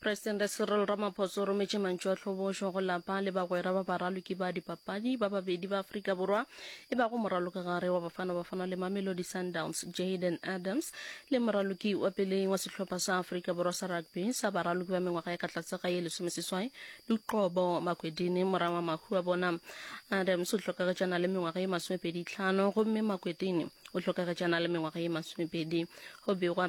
Presidente Cyril Ramaphosa o rometše mantšu a tlhobošo go lapa le bagwera ba baraloki ba dipapadi ba babedi ba Afrika Borwa e bago moralokagare wa Bafana Bafana le Mamelodi Sundowns Jayden Adams le moraloki wa peleng wa sehlopha sa Afrika Borwa sa rugby sa baraloki ba mengwaga ya ka tlase ga ye lesomeseswai Luqobo Makwedini mora wa mahu a bona. Adams o hlokagetšana le mengwaga ye masomepedi tlhano gomme Makwedini o hlokagetšana le mengwaga ye masomepedi go begwa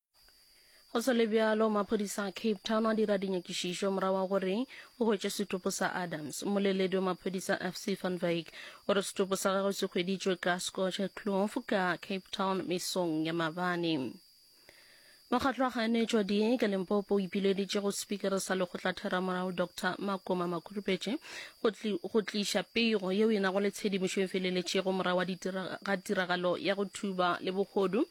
go se le bjalo maphodisa a cape town a dira dinyakišišo morago wa gore o hwetše setopo sa adams moleledi wa maphodisa fc van vik o re setopo sa gagwe se hweditšwe ka scotch clof ka cape town mesong ya mabane mokgatlo wa kganetšwa di ka lempopo o ipileditše go sepikere sa lekgotlatheramorago dr makoma makhurupetše go tliša pego yeo e nago le tshedimošo e feleletšego morago ga tiragalo ya go thuba le bogodu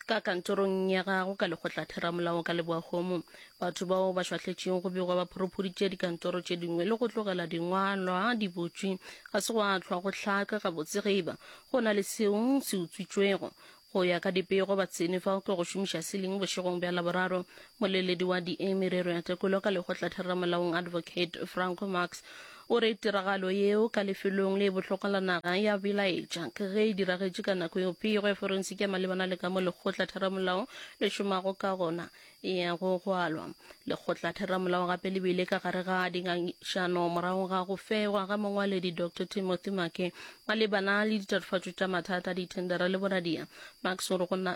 ka kantorong ya gago ka lekgotlatheramolao ka leboahomo batho bao ba šwahletšego go begwa ba phorophuditše dikantoro tše dingwe le go tlogela dingwalwa di botšwe ga se go a tlhwa go hlaka gabotse ge eba go na le seo se utswitšwego go ya ka dipego ba tsene fao ke go šomiša siling bošegong bja laboraro moleledi wa di merero ya tekolo ka lekgotlatheramolaong advocate franco marx O re tiragalo yeo ka lefelong le bohlokwa la naga ya belaetša ke ge e diragetše ka nako yeo pego ya forensiki ya malebana le ka mo Lekgotla Theramolao le šomago ka gona e yago go alwa. Lekgotla Theramolao gape le bile ka gare ga dingangišano morago ga go fegwa ga Mongwaledi Doctor Timothy Make malebana le ditatofatšo tša mathata a dithendera le boradia. Makes o re go na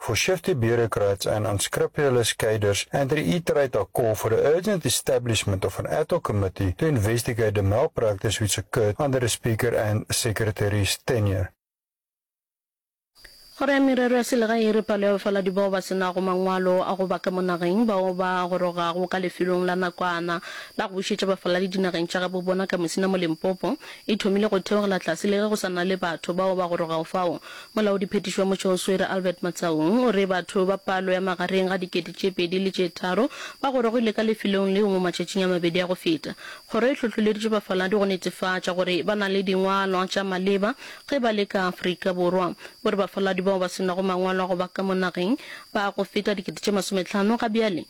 for shifty bureaucrats and unscrupulous cadres and reiterate our call for the urgent establishment of an ad hoc committee to investigate the malpractice which occurred under the Speaker and Secretary's tenure. Kgoro ya Merero ya Selegae e re palo ya bafaladi bao ba se nago mangwalo a go ba ka mo nageng bao ba gorogago ka lefelong la nakwana la go bušetša bafaladi dinageng tša gabobona ka Musina mo Limpopo e thomile go theogela tlase le ge go sa na le batho bao ba gorogago fao Molaodiphethiši wa motšeo Swere Albert Matsaung o re batho ba palo ya magareng ga dikete tše pedi le tše tharo ba gorogile ka lefelong leo mo matšatšing a mabedi a go feta. Kgoro e hlohloleditše bafaladi go netefatša gore ba na le dingwalwa tša maleba ge ba le ka Afrika Borwa. O re bafaladi bao ba se nago mangwalo a go ba ka mo nageng ba go feta dikete tše masometlhano ga bjale.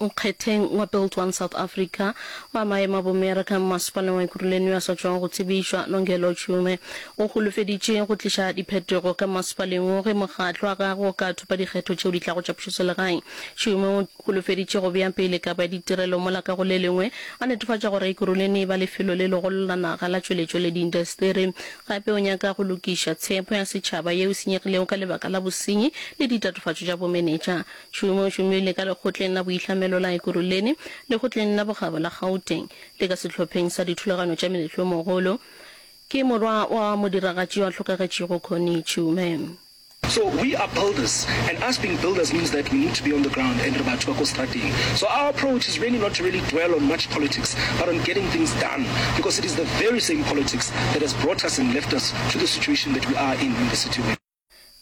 Nkgetheng wa Build One South Africa wa maemo a bomearaka Mmasepaleng wa Ekurhuleni yo a sa tšwago go tsebišwa, Nongelo Tshiume, o holofeditše go tliša diphetogo ka mmasepaleng wo ge mokgatlo wa gagwe o ka thopa dikgetho tšeo di tlago tša pušoselegae. Tshiume o holofeditše go bea pele kabo ya ditirelo mola ka go le lengwe a netefatša gore Ekurhuleni e ba lefelo le legolo la naga la tšweletšo le diintaseteri. Gape o nyaka go lokiša tshepo ya setšhaba yeo e senyegilego ka lebaka la bosenyi le ditatofatšo tša bomenetša. Tšhomo o tšomile ka Lekgotleng la Boitlhamelo la Ekurhuleni, Lekgotleng la Bokgabo la Gauteng le ka Sehlopheng sa Dithulaganyo tša Meletlomogolo. Ke morwa wa modiragatši yo a hlokagetšego Connie Tšhome. So we are builders and us being builders means that we need to be on the ground and re batho ba ko strateng. So our approach is really not to really dwell on much politics but on getting things done because it is the very same politics that has brought us and left us to the situation that we are in in the city.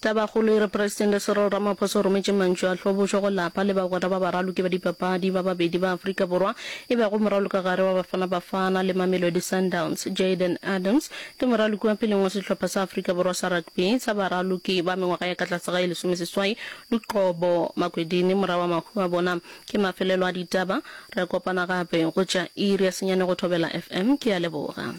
Tabakgolo e re Presidente Cyril Ramaphosa o rometše mantšu a tlhobošo go lapa le bagwera ba baraloki ba dipapadi ba babedi ba Afrika Borwa e bego moralokagare wa Bafana Bafana le Mamelodi Sundowns. Jayden Adams ke moraloki wa peleng wa sehlopha sa Afrika Borwa sa rugby sa baraloki ba mengwaga ya ka tlase ga e lesomeseswai. Luqobo Makwedini mora wa mahu a bona ke mafelelo a ditaba. Re a kopana gape go tša iri ya senyane go Thobela FM. Ke a leboga.